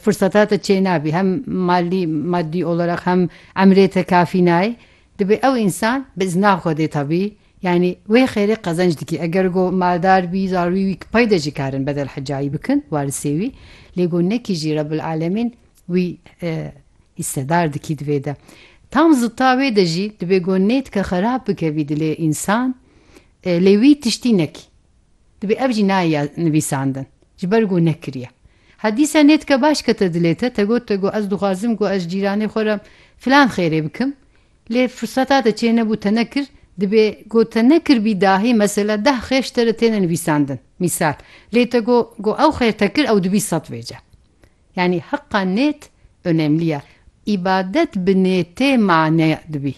Firseta te çênabî hem malî madî oleraq hem emrê te kafî nayê. Dibê ew însan bi izna Xwedê tabî yanî wê xêrê qezenc dikê. Eger go maldar bî zarûyî wî pey de jî karin bedel hecayî bikin warisê wî. Lê go nekî jî Rebil Alemîn wî hîssedar dikî di vê de. Tam zidta wê de jî dibê go nêtike xerab bike vî dilê însan lê wî tiştî nekî. Dibê ev jî nayê ya nivîsandin. Ji ber ku nekiriye. Ha dîsa nêdike baş kete dilê te, te got te ku ez dixwazim ku ez ji cîranê xwe re filan xêrê bikim. Lê firseta te çê nebû te nekir. Dibê ku te nekiribî dahî mesela deh xêr ji te re têne nivîsandin. Mîsal. Lê te got ku ew xêr te kir ew dibî sed vêce. Yanî heqa nêt önemli ye. Îbadet bi nêtê mane dibî.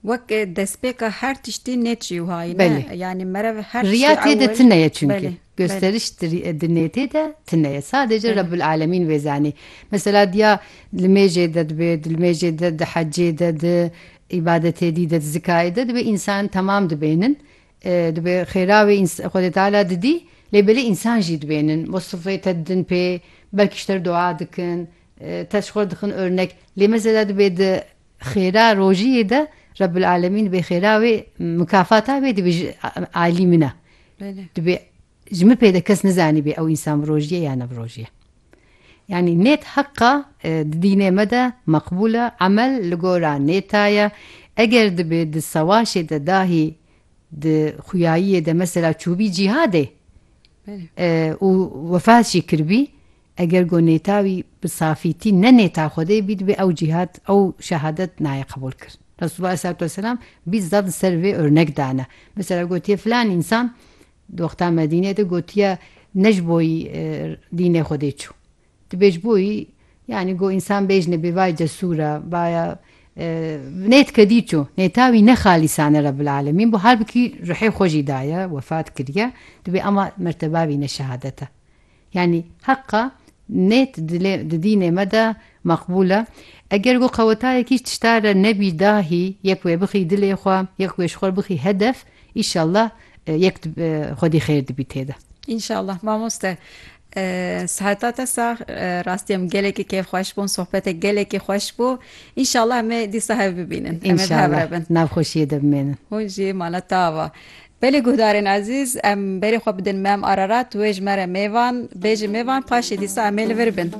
Wek destpêka her tiştî nê çi wiha ye ne? Yanî merev her tiştê ewil. Riya tê de tune ye çunki. Gosteriş di nêtê de tune ye. Sadece Rebul Alemîn wê zanî. Mesela diya li mêjê de dibe, di li mêjê de, di hecê de, di îbadetê dî de, di zikayê de dibe însan temam dibênin. Dibe xêra wê Xwedê Teala didî lê belê însan jî dibênin. Wasifê te didin pê, belkî ji te re dua dikin, te ji xwe re dixin örnek. Lê mesela dibe di Xêra rojiyê de Rebbul Alemîn dibê xêra wê mukafata wê dibê ji aîlî min e. Dibê ji min pê de kes nizanîbê ew însan bi rojiyê ya ne bi rojiyê. Yanî nêt heqa di dînê me de meqbûl e, emel li gora nêta ye. Eger dibê di sewaşê de dahî di xuyayiyê de mesela çûbî cîhadê û wefat jî kiribî, Eger ku nêta wî bi safîtî ne nêta Xwedê bî dibê ew cîhat, ew şehadet nayê qebûlkirin. Resûlullah aleyhisselatu vesselam bîst zaf li ser vê örnek dane. Mesela gotiye filan însan di wexta Medîneyê de gotiye ne ji bo wî dînê Xwedê çû. Tu bê ji bo wî yanî ku însan bêjine bê vay cesûr e, vay e nêt kedî çû. Nêta wî ne xalîsane Rebbil alemîn bû halbikî ruhê xwe jî daye, wefat kiriye. Dibê ema merteba bîne şehadet e. Yanî heqa nêt di dînê me de meqbûl e. Eger ku qewetayekî tişta re nebî dahî yek wê bixî dilê xwe, yek wê ji xwe re bixî hedef, îşallah yek xwedî xêr dibî tê de. Înşallah mamoste. Siheta te sax. Rastî em gelekî keyf xweş bûn, sohbetek gelekî xweş bû. Înşallah em ê dîsa hev bibînin. Em ê bi hev re bin. Înşallah navxweşiyê de bimênin. Hûn jî mala te ava. Belê guhdarên ezîz, em berê xwe bidin Mem Ararat, wê ji me re mêvan, bê ji mêvan paşê dîsa em ê li vir bin.